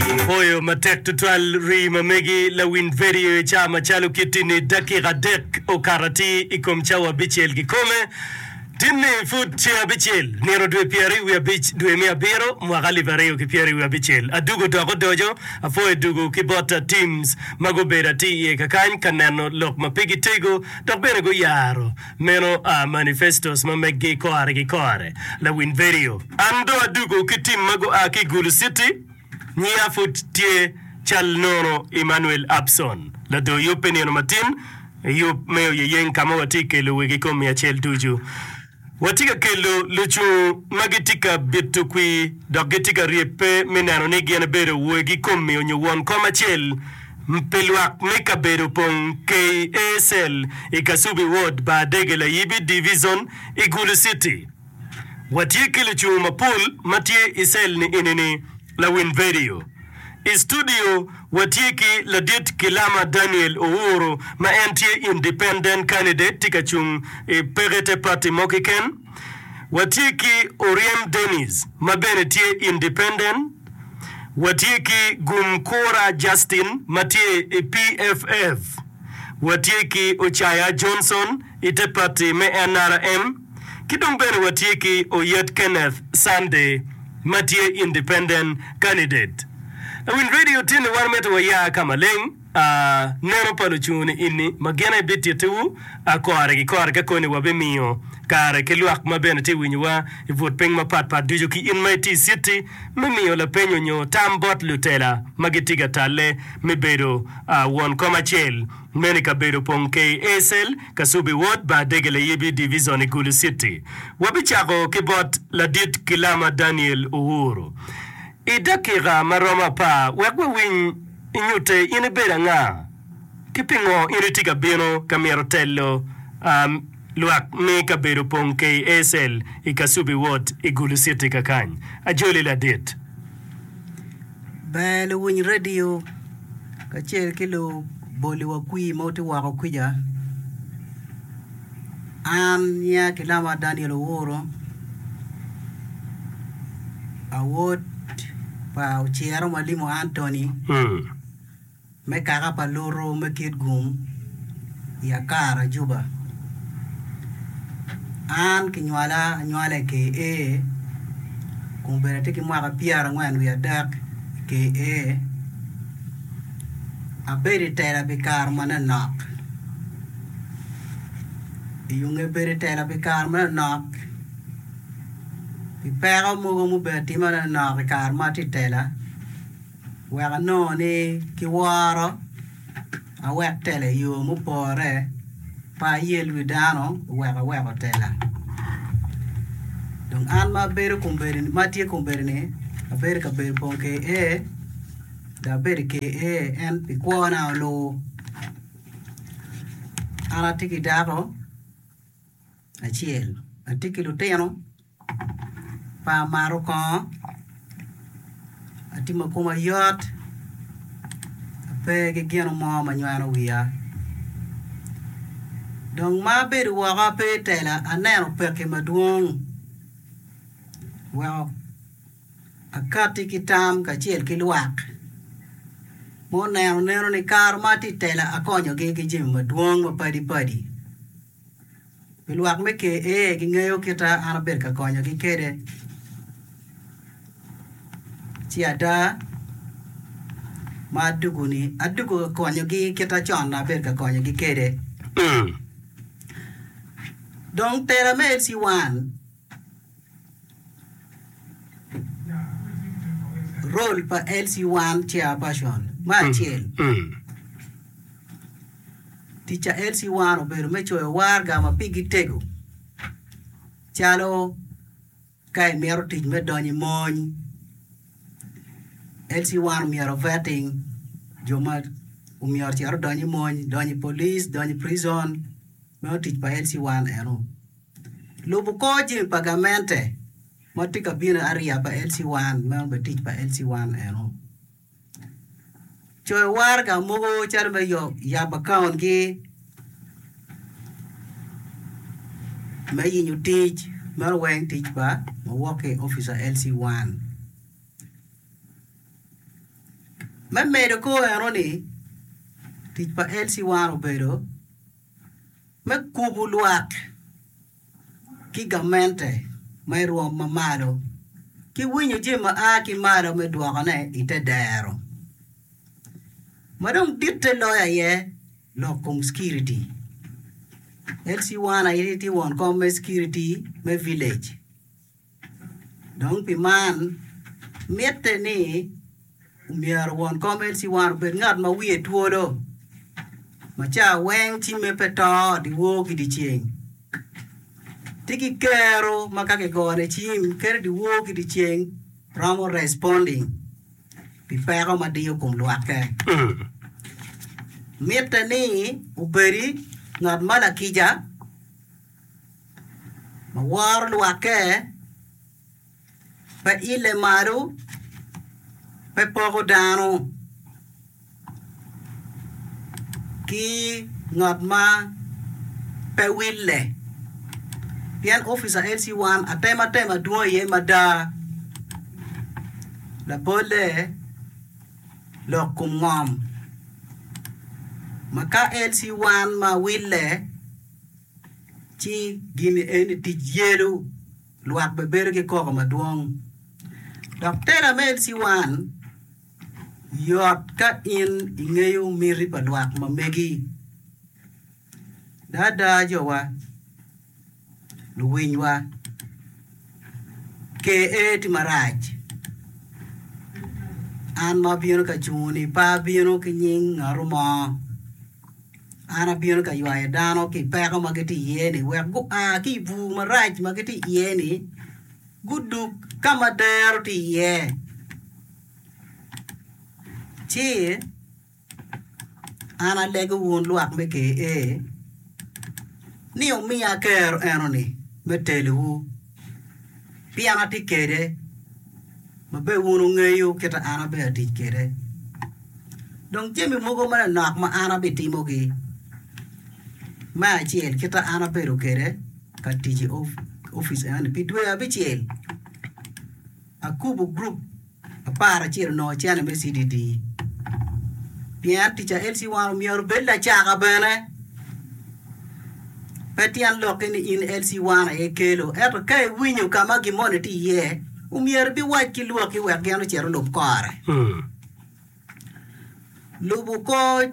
Apoyo matek tutwal rii ma megi lawiny vedio i ca macalo kiti ni dakika adek okato atir i kom cawa abicel kikome tin ni pud ceng abicel nino dwe pyera i wi abic dwe me abiro mwaka alip aryo ki pyera i wi abicel adugo dok odoco apoyo dugo ki bot a teams ma gubedo atir iye kakany ka neno lok ma pigi tego dok bene guyaro meno a manifestos ma megi kore ki kore lawiny vedio an do adugo ki team ma gua ki igulu city. Ngiya pud tye cal nono Emmanuel Abson, lador yub pi nino matin i yub me oyeyeng ka ma watye ka kelo wegi i kom myecel ducu. Watye ka kelo lucung ma gitye ka bito kwir dok gitye ka ryebbe me neno ni gin ebedo wegi komi onyo won kom acel pi lwak me kabedo pong KASL i Kasubi Ward, Baadege, Layibi Divizon i Gulu Citi. Watye ki lucung mapol ma tye i cell ni enini, Lawiny Vedio. I studio watye ki ladit Kilama Daniel Owuru ma en tye independent candidate tye ka cung i peke te party mo kiken. Watye ki Oryem Denis ma bene tye independent. Watye ki Gum Kura Justin ma tye i PFF. Watye ki Ocaya Johnson i te party me nrm. Ki dong bene watye ki Oyet Kenneth Sunday ma tye independent candidate. Lawiny radio tye ni wan mitte waya ka maleng a nono pa lucungu ni ini ma gin aye bitittiwu a kore ki kore ka koni wabimiyo kare ki lwak ma bene tye winyowa i but piny mapat pat ducu ki in ma iti i citi me miyo lapenyo nyo tam bot lutela ma gitye ka talle me bedo a won kom acel Meno ikabedo opong KASL, Kasubi Ward, Bar Dege Layibi, Divizon i Gulu Citi. Wabicako ki bot ladit Gilama Daniel Uhuru i dakika ma romo apar wek wawiny i nyutte in ibedo anga ki pingo in itye ka bino ka myero telo lwak me kabedo opong KASL i Kasubi Ward i Gulu Citi kakany. Ajoli ladit. Ber luwiny radio kacel ki luboli wa kwir ma tye woko kwica. An nyinga kilama Daniel Owuro awot pa Ociro ma limo Antony. me kaka pa lutu me kit gum i Akara Juba. An kinywala anywala i KA kun bene atye ki mwaka pyerangwen wiye adek i KA. Abedo i tela pi kare manonok. I onge bedo i tela pi kare manonok pi peko mogo mubedo atima manonok i kare ma atye i tela, wek anongo ni ki woro awek tela i yo mupore pe ayel wi dano wek aweko tela dong an ma abedo kombeddi ma atye kombeddi ni abedo i kabedo bong ki iye dok abedo i ker iye en pi kwona oluwu an atye ki dako acel atye ki lutino pe amato kongo atye ma koma yot ape ki gino mo ma nywano wiya dong ma abedo woko ape i tela aneno pekki madwong weko akati ki tam kacel ki lwak ma oneno neno ni kare ma atye i tela akonyogi ki jami madwong mapadi padi. Pi lwak me Ker, ee, gingeyo kita an abedo ka konyogi kwede. Ci ada ma adwogo-ni, adwogo ka konyogi kit ma con abedo ka konyogi kwede. Dong tera me LC1. Role pa LC1 Chair Person Me acel, tic pa LC1 obedo me coyo warga ma pigi tego calo ka imito tic me donyo i mony, LC1 omyero o vetting jo ma omyero ocit odony i mony, donyo i police, donyo i prison, meno tic pa LC1 eno. Lubo kor jing pa gamente ma tye ka bino ariya pa LC1, meno bene tic pa LC1 eno. Coyo waraga mogo calo me yabo akaungi, me yenyo tic, meno weng tic pa ma wok ki i opic pa LC1. Me medo kor eno ni tic pa LC1 obedo. me kubo lwak ki gamente ma i rwom ma malo, ki winyo jami ma a ki malo me dwokone i te dero. Ma dong ditte loyo aye lok kom Security. LC1 aye tye won kom me Security me Village. Dong pi man, mitte ni myero won kom LC1 obed ngat ma wiye twolo, ma cawa weng cimme pe to dyewor ki dyeceng. Ti ki kero ma ka kigone cim kadi dyewor ki dyeceng romo responding pi peko ma diyo kom lwakke. Mitte ni obedi ngat ma lakica. ma woro lwakke, pe ile malo, pe poko dano ki ngat ma pe wille pien opica LC 1 atemo atema dwong iye mada labolle lok kom ngom ma ka LC 1 ma wille Ci gin eni tic yelo lwak bene bedo ki koko madwong. Dok tela me LC1 yot ka in ingeyo miti pa lwak ma megi. Daa daa jowa, luwinywa, KA ti marac, an ma abino ka cungo ni pe abino ki nying ngatu mo. An abino ka ywayo dano ki i peko ma gitye iye-ni wek gua ki i bur marac ma gitye iye-ni, gudug ka ma dero tye iye, ci an alego wun lwak me ker-re ni wumiya aker enoni me telowu. pien atye kede, ma bene wun wungeyo kite ma an abedo ka tic kwede. Dong jami mogo manok ma an abitimogi, me acel kit ma an abedo kwede ka tic i opic eni pi dwe abicel. Akubo group apar acel onongo channel me CDD pien teacher Elsie Wano myero obed lacaka bene. Pe tyen lokke ni in Elsie Wano aye kelo ento ka iwinyo ka ma gin moni tye iye omyero ibiwac ki lwakki wek gin ocit olub kore. Lubo kor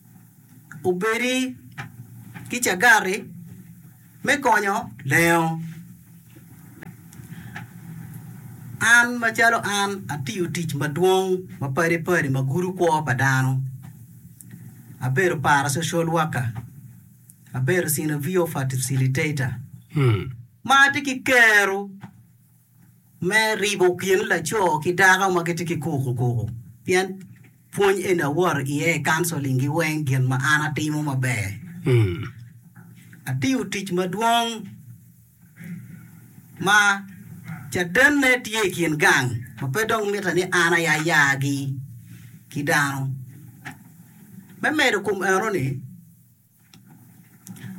obedi ki cagati me konyo lengo. An macalo an atiyo tic madwong ma padi padi ma gudo kwo pa dano, abedo para social worker, abedo synovio facilitator ma atye ki kero me ribo kin laco ki dako ma gitye ki kukukuku pien pwony eni awoto iye i kanceling gi weng gin ma an atimo maber. Atiyo tic madwong ma cadenne tye i kin gang ma pe dong mitte ni an aya yagi ki dano. Me medo kom enoni,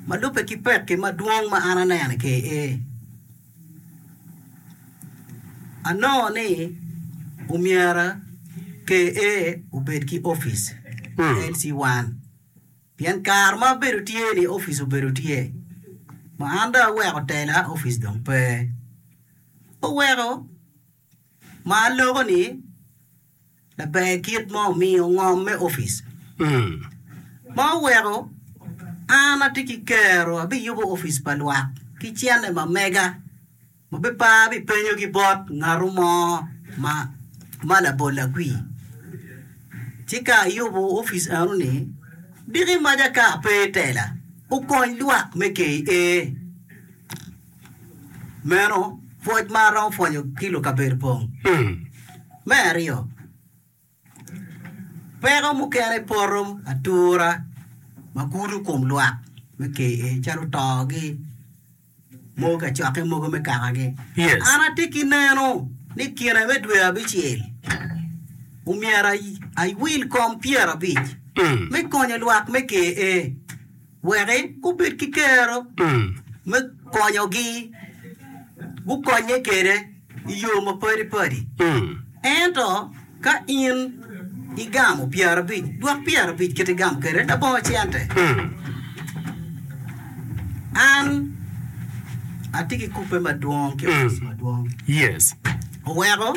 Ma lubbe ki pekki madwong ma an aneno ki i ee, anongo ni omyera KA obed ki opic LC 1 pien kare ma abedo tye ni opic obedo tye ma an dong aweko tela opic dong pe oweko ma aloko ni laber kit ma omiyo ngom me opic ma oweko an atye ki kero abiyubo opic pa lwak ki cene ma mega ma pe pe abipenyo ki bot ngatu mo ma ma labol agwi ci ka ayubo opic eno ni diki maca ka ape tela okony lwak me KA. Meno pwoc ma aromo pwonyo ki lukabedo pong. Me aryo, peko mukene poto atura ma kuto kom lwak me KA calo togi, mogo kacokke, mogo me kakagi. An atye ki neno ni i kine me dwe abicel omyero awil kom pyerabic me konyo lwak me KA. Wek gubed ki kero me konyogi gukonye kwede i yo mapadi padi. Ento ka in igamo pyerabic, dwok pyerabic kit igamo kwede labongo cente. An atye ki kubbe madwong ki opic madwong. Oweko.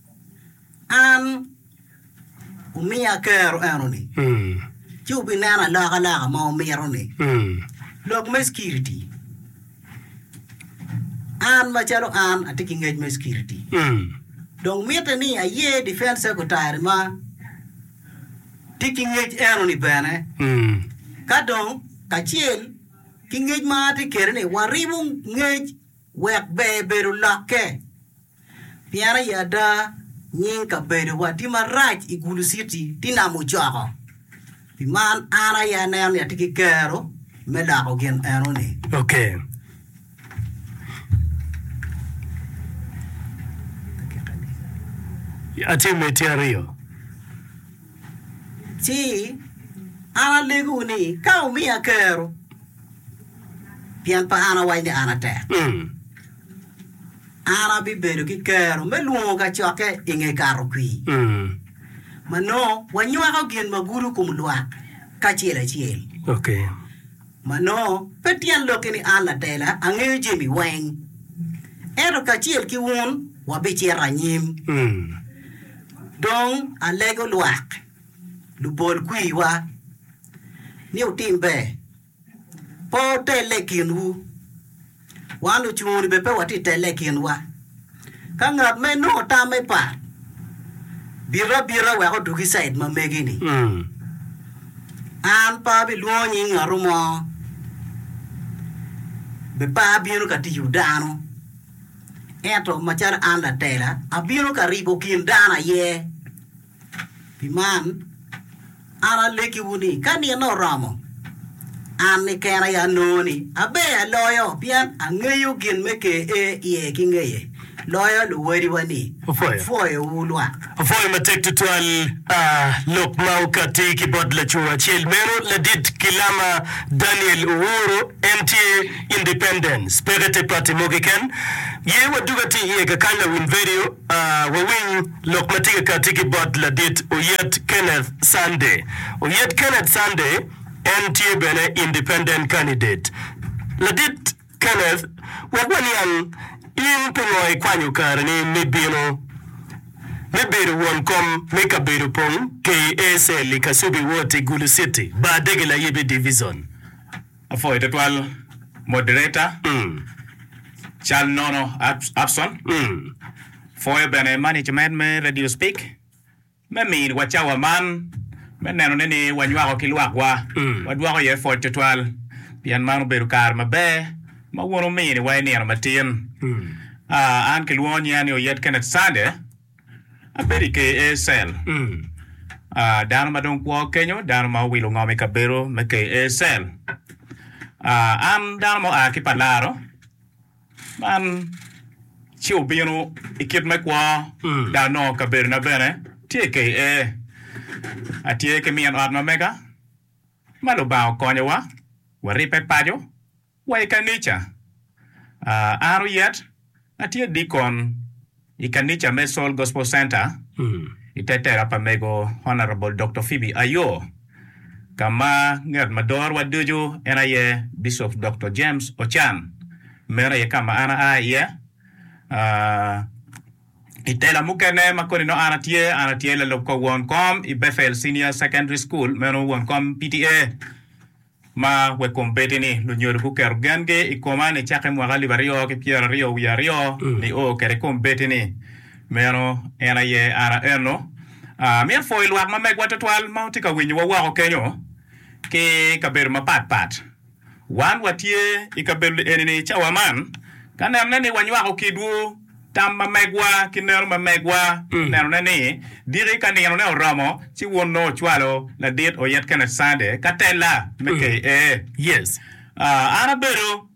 An omiya akero enoni, ci wubineno alokaloka ma wumito-ni. Lok me Cukiriti, An macalo an atye ki ngec me cukiriti, dong mitte ni aye Defence Secretary ma tye ki ngec enoni bene. Ka dong kacel ki ngec ma atye kwede-ni, waribo ngec wek ber bedo lokke Pien aye ada, nying kabedowa tye marac i Gulu Citi ti nam ocoko. Pi man, an aye aneno ni atye ki kero me loko gin eno-ni. Okay. Atye metti aryo. Ci, an alegowu ni ka wumiya kero, pien pe an awaco ni an atek, Mm. An abibedo ki kero me lwongo kacokke i nge Kato-kwir, ma nongo wanywako gin ma gudo kom lwak kacel acel. Ma nongo pe tyen lokki ni an latela angeyo jami weng, ento kacel ki wun wabicito anyim. Dong alego lwak lubol-kwiwa ni wutim ber Pe wutelle i kinwu. Wan lucungu-ni bene pe watye ka telle i kinwa. Ka ngat ma inongo tamme pat bito abita wek odug i cid ma megi-ni, an pe abilwongo nying ngatu mo, be pe abino ka tiyo dano. Ento macalo an latela, abino ka ribo kin dano aye. Pi man, an alekkiwu ni, ka nino oromo, an keken aye anongo ni aber aloyo, pien angeyo gin me ker ee iye ki ngeye, loyo luwadiwa ni apwoyowu lwak. Apwoyo matek tutwal lok ma okatti ki bot lacoo acel meno, Ladit Gilama Daniel Owuro. En tye Independence, peke te pati mo keken. Ye waduga tye iye kakany lawiny vedio, wawiny. Lok ma tye ka katti ki bot ladit Oyet Kenneth Sunday. Oyet Kenneth Sunday en tye bene independent candidate. Ladit Kenneth, wek waniang in pingo ikwanyo kareni me bino me bedo won kom me kabedo pong KACL i Kasubi Ward i Gulu City, Bar Dege Layibi Divizon. Apwoyo twatwal moderator cal nono Abson, pwoyo bene management me Radio Speak me mini wa cawa man me neno ne ni wa nywako ki lwak wa wa dwoko iye pwoc twatwal pien man obedo kare maber ma wun wumini wa inino matin. An kilwongo nyinga ni Oyet Kenneth Sande. Abedo i KASL, dano ma dong kwo kenyo, dano ma owilo ngom i kabedo me KASL. An dano ma oa ki pa laro, man ci obino i kit me kwo dok anongo kabedona bene tye i KA. Atye ki min ot ma mega ma Lubanga okonyowa waribbe paco. Wa i kanica. An Oyet, atye dikon i kanica me Soul Gospel Center i te tera pa Mego Honourable Doktor Phoebe Ayoo, ka ma ngat ma dorowa ducu en aye Bishop Doktor James Ochan. Meno aye ka ma an aa iye. I tela mukene ma koni nongo an atye, an atye lalub kor won kom i Bethel Senior Secondary School, meno won kom PTA. Ma wek kom bedi ni lunyodo guketo gengi i koma ni cakke mwaka alip aryo ki pyera aryo wiye aryo nio kede kom bedi ni meno en aye an aeno. Amito pwoyo lwak ma megwa twatwal ma wutye ka winyowa woko kenyo ki kabedo mapat pat. Wan watye i kabedo eni ni cawa man ka nenone ni wanywako kidwu. Tam ma megwa ki neno ma megwa onenone ni diki ka ninone oromo ci wun nongo wucwalo ladit oyet kene Sunday ka tella me KA. An abedo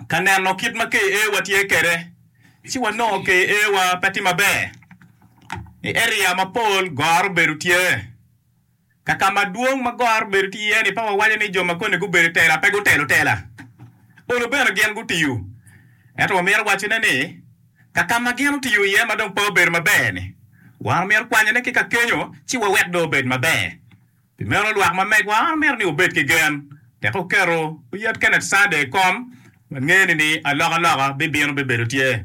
ka neno kit ma KA wa tye kwede ci wanongo KA wa pe tye maber. I area mapol goro obedo tye. Ka ka madwong ma goro bedo tye iye-ni, pe wawaco ni jo ma koni gubedo i tela pe gutelo tela. Olo bene gin gutiyo. Ento wamito wacone ni, ka ka ma gin otiyo iye ma dong pe obedo maber-ni, wan omyero kwanyone ki ka kenyo ci wawek dong obed maber. Pi meno, lwak ma megwa omyero ni obed ki gen. Tek oketo oyet Kenneth Sunday i kom, wangeni ni alokaloka bibino bibedo tye.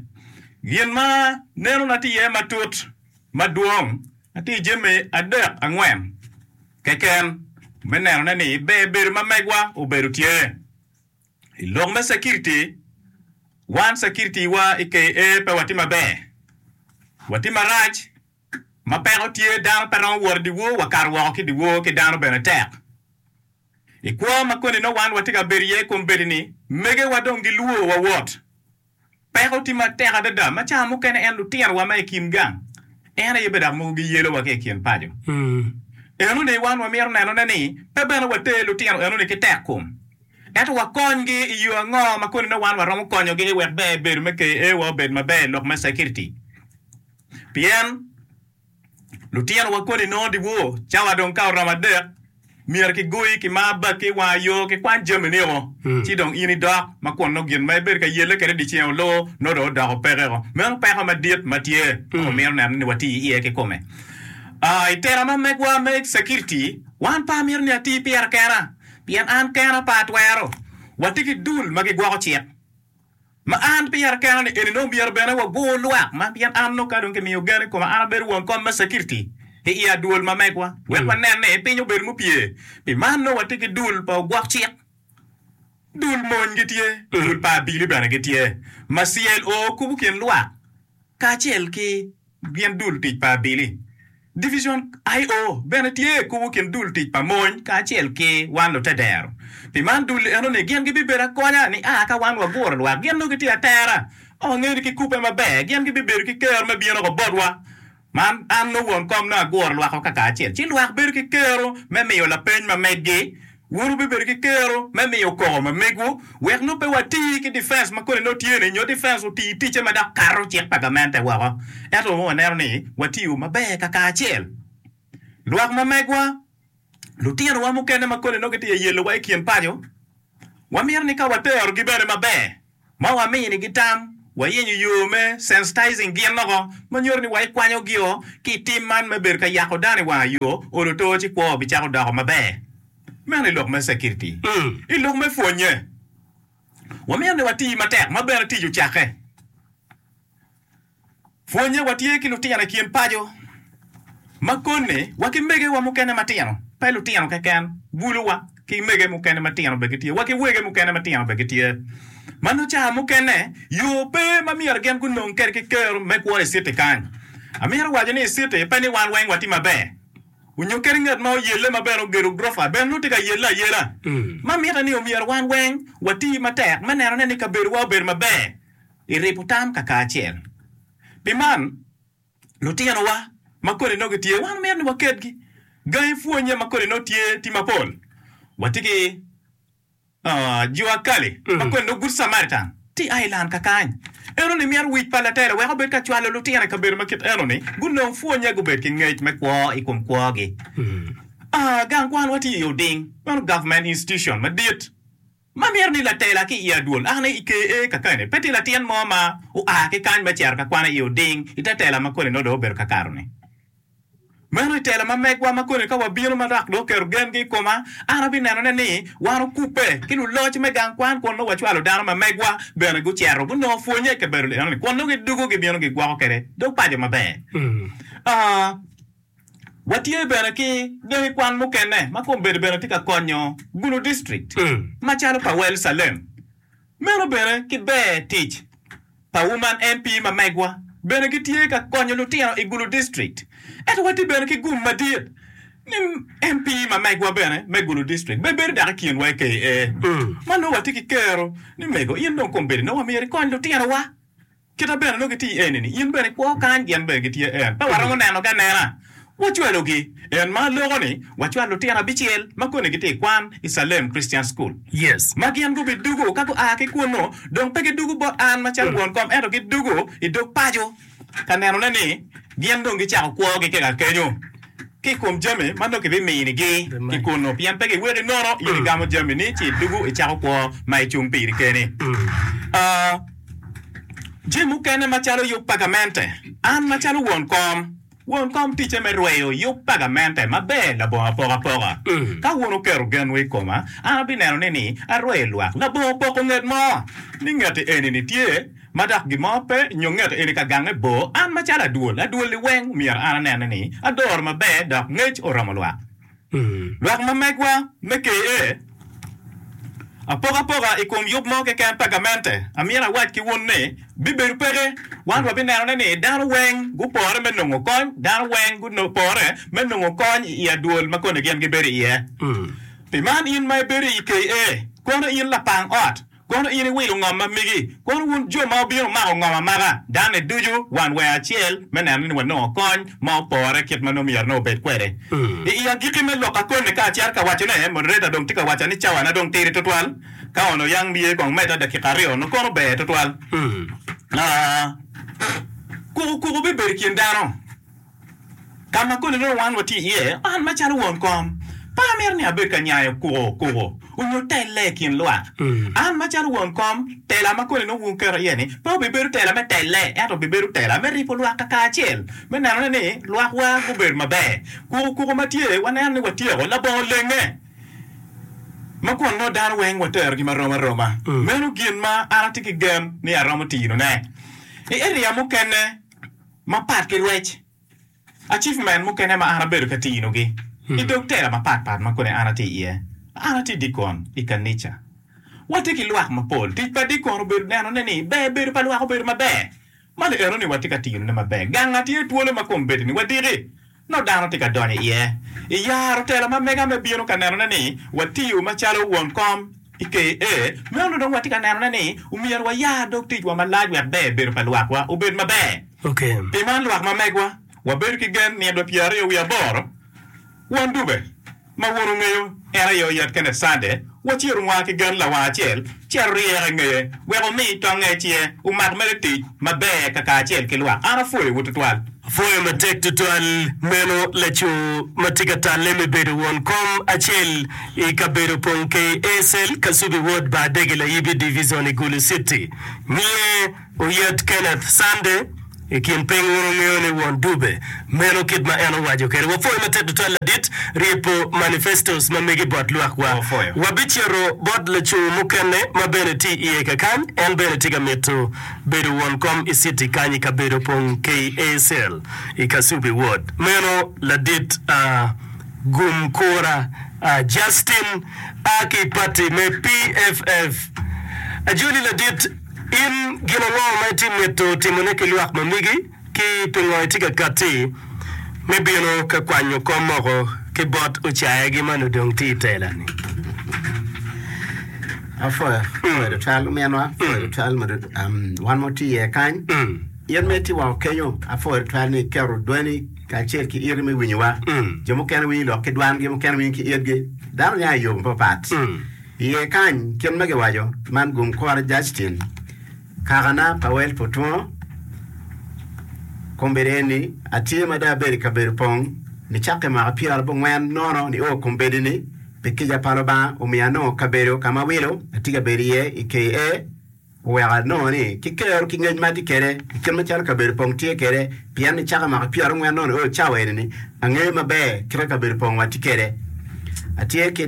Gin ma nenona tye iye matut madwong atir jami adek angwen keken me nenone ni ber bedo ma megwa obedo tye. I lok me cekiriti, wan cekiritiwa i KA pe watye maber, watye marac. Ma peko tye, dano pe romo wot i dyewor, wakato woko ki i dyewor ki dano bene tek. I kwo ma koni nongo wan watye ka bedo iye kombeddi-ni, megewa dong gilwor wawot. Peko tye matek adada ma cawa mukene en lutinowa ma i kin gang en aye bedo mogo giyelowa ki i kin paco. Enoni wan wamito nenone ni pe bene water lutino enoni ki tekkom, ento wakonygi i yo ango ma koni nongo wan waromo konyogi wek ber bedo me KA wa obed maber i lok me cekiriti? Pien. Lutinowa koni nongo dyewor cawa dong ka oromo adek, myero kigoyi ki mar baki, wanga yo ki kwan jamini o, ci dong in idok ma kun nongo gin ma ibedo ka yelle kwede dyeceng olo nongo dong odoko peke o. Meno peko madit ma tye ma wamito neno ni wati iye kikome. Aa, i tera ma megwa me cekiriti, wan pe amito ni ati pira kena, pien an kena pe atwero. Wati ki dul ma gigwoko cik. Ma an pira kena ni eni nongo myero bene wagur lwak man pien an nongo ka dong kimiyo gen i koma an abedo won kom me cekiriti i i adwol ma megwa wek wanen ni piny obedo mupye. Pi man nongo watye ki dul pa ogwok cik, dul mony gitye, dul pa abili bene gitye ma CLO kubo kin lwak kacel ki. gin dul tic pa Abili. Divicion IO bene tye kubo kin dul tic pa mony kacel ki wan lutedero. Pi man dul eno ni gin gibibedo akonya ni a ka wan waguro lwak gin nongo gitye atera o nge ni ki kubbe maber gin gibibedo ki kero me bino ko botwa. Man an nongo won kom nongo aguro lwak o kaka acel ci lwak bedo ki kero me miyo lapeny ma meggi. Wun wubibedo ki kero me miyo koko ma megwu wek nongo pe wati ki difens ma koni nongo tye-ni nyo difens oti ticce ma dok kato cik pa gamente woko. Ento nongo waneno ni watiyo maber kakacel. Lwak ma megwa, lutinowa mukene ma koni nongo gitye ka yelowa i kin paco, wamito ni ka waterogi bene maber. ma waminigi tam, wayenyo yo me sensitizing gin loko ma nyuto ni waikwanyo gio ki i tim man me bedo ka yako dano i wanga yo, olo too ci kwo bicako doko maber. Meno i lok me cekiriti. I lok me pwonye, wamito ni wati matek ma bene tic ocakke. Pwonnye, Watye ki lutino i kin paco ma kone wa ki megewa mukene matino, pe lutino keken, buluwa ki mege mukene matino bene gitye, wa ki wege mukene matino bene gitye. Ma nongo ca mukene yo pe ma myero gin gunong kwede ki ker me kwo i citi kany. Amito waco ni i citi pe ni wan weng watye maber nyo kadi ngat ma oyelle ma bene ogedo gurofa bene nongo tye ka yelle ayela. Ma mite ni omyero wan weng wati matek me nenone ni kabedowa obedo maber. I ribo tam kakaacel. Pi man, lutinowa ma kodi nongo gitye, wan omyero ni waketgi gangi pwonye ma kodi nongo tye ti mapol. Watye ki jo akali ma kodi nongo Good Samaritan ti a i lan kakany. Eno ni myero wic pa latela wek obed ka cwalo lutino i kabedo ma kit eno ni gunong pwonye gubed ki ngec me kwo i kom kwogi. Gang kwanwa tye i oding, meno government institution madit. ma mito ni latela ki i adwol ane i ker-re kakane. Pe tye latin mo ma oa ki kany me cito ka kwane i oding i te tela ma koni nongo dong obedo kakato-ni. Meno i tela ma megwa ma koni ka wabino ma dok dong oketo gengi i koma, an abinenone ni wan okubbe ki luloc me gang kwan kun nongo wacwalo dano ma megwa bene gucito gunongo pwonye i kabedo enoni kun nongo gidwogo gibino gigwoko kwede dog paco maber. Watye bene ki dong i kwan mukene ma kombedo bene tye ka konyo Gulu District macalo pa Well Salem. Meno bene ki ber tic pa Woman MP ma megwa bene gitye ka konyo lutino i Gulu District. Ento watye bene ki gum madit ni MP ma megwa bene me Gulu District bene bedo dok i kinwa i KA ma nongo watye ki kero ni mego in dong kombedo nongo wamyero ikony lutinowa. Kite bene nongo gitye eni ni in bene ikwo kany gin bene gitye en. Pe waromo nenogi anena. Wacwalogi. En ma loko ni wacwal lutino abicel ma koni gitye i kwan i Salem Christian School. Yes. Ma gin gubidugu ka gua ki kunnu. Dong pe gidugu bot an macalo won kom ento gidugu i dog paco ka nenone ni gin dong gicako kwogi kika kenyo. ki i kom jami ma nongo kibiminigi ki kunnu, pien pe giweki nono in igamo jamini ci idwogo icako kwo ma icung piri keni. Jami mukene macalo yub pa gamente, An macalo won kom, won kom ticce me rweyo yub pa gamente maber labongo apokapoka. Ka wun wuketo genwu i koma, an abineno ni arweyo lwak labongo poko nget mo, ni ngeti eni-ni tye, ma dok gin mo pe nyo ngeto eni ka gange bor, an macalo adwol, adwol liweng myero an anene ni adoro maber dok ngec oromo lwak. Lwak ma megwa me KA. Apokapoka i kom yub mo keken pa gamente, amyero awac ki wun ni, bibedo peke, wan wabinenone ni dano weng gupore me nongo kony, dano weng gupore me nongo kony i adwol ma koni gin gibedo iye. Pi man in ma ibedo i KA, kono in lapang ot, Kono in iwilo ngomma megi, kono wun jo ma wubino mako ngom amaka, dame ducu wan wee acel me neno ni wanongo kony ma opore kit ma nongo myero nongo obed kwede. I i agikki me lok akone ka acito ka wacone, moderator dong tye ka waca ni cawana dong tidi tutwal, ka ono yang myero kong omedda dakika aryo nongo kono ber tutwal. Aa, kuku kuku bibedo i kin dano. Ka ma koni dong wan watye iye? An macalo won kom, pe amito ni abed ka nyayo kuko kuko onyo telle i kin lwak. An macalo won kom, tela ma koni dong wuketo iye-ni pe obibedo tela me telle, ento obibedo tela me ribo lwak kakacel, me nenone ni lwakwa gubedo maber. Kuko kuko ma tye, waneno ni watyeko labongo lenge ma kun nongo dano weng waterogi ma rom aroma. Meno gin ma an atye ki gen ni aromo tinone i eria mukene. Mapat ki lwec acifmen mukene ma an abedo ka tinogi i dog tela mapat pat ma kodi an atye iye, an atye dikon i kanica. Watye ki lwak mapol. Tic pa dikon obedo nenone ni ber bedo pa lwak obedo maber. Ma li enoni watye ka tinone maber. Gang-ga tye twolo ma kombeddi-ni wadiki. nongo dano tye ka donyo iye. I yaro telo ma mega me bino ka nenone ni watiyo macalo won kom i KA, me onongo dong watye ka nenone ni myero waya dog ticwa malac wek ber bedo pa lwakwa obed maber. Pi man, lwak ma megwa, wabedo ki gen nitwa pyeraryo wiye aboro won dube. Ma wun wungeyo, en aye oyat kene Cande, waci orumo a ki gan lawang acel, ci aryeke i ngeye, wek omi tongnge i cinge, omak mere tic maber kakacel ki lwak. An apwoyowu twatwal. Apwoyo matek twatwal meno laco ma tye ka talle me bedo won kom acel i kabedo Pongkei ASL, Kasubi Ward, Baadege, Layibi Divizon i Gulu Citi. Nyiye. Oyet Kenneth Sunday i kin piny wun wungeyo ni won Dube meno kit ma en owaco kwede. Wapwoyo matek tutwal ladit ryebbo manifestos ma megi bot lwakwa. Wabicito bot laco mukene ma bene tye iye kakany, en bene tye ka mito bedo won kom i citi kany i kabedo pong KACL i Kasubi ward. Meno ladit a gum kura a Justin a ki pati me PFF. Ajoli ladit. In gin ango ma itye mito timone ki lwak ma migi, ki pingo itye ka katti me bino ka kwanyo kom moko ki bot ocayagi ma nongo dong tye i telani? Apwoyo tutwal ominwa, apwoyo tutwal wan ma watye iye kany. In ma itye woko kenyo, apwoyo tutwal ni iketo dwani kacel ki iti me winyowa. Jo mukene winyi lok ki dwangi, mukene winyi ki itgi. Dano nya i yo mapapat. Iye kany kit ma giwaco man gum kore Justin kakana Powell pu twongo kombeddi eni atye ma dong abedo i kabedo pong ni cakka i mwaka pyera bo ngwen nono ni o kombeddi ni pi kica pa lubanga omiyo anongo kabedo kama awilo atye ka bedo iye i KA oweko anongo ni ki kero ki ngec ma atye kede i kit macalo kabedo pong tye kede pien ni cakka i mwaka pyera ngwen nono o cawa eni ni angeyo maber kite kabedo pong wa tye kede atye ki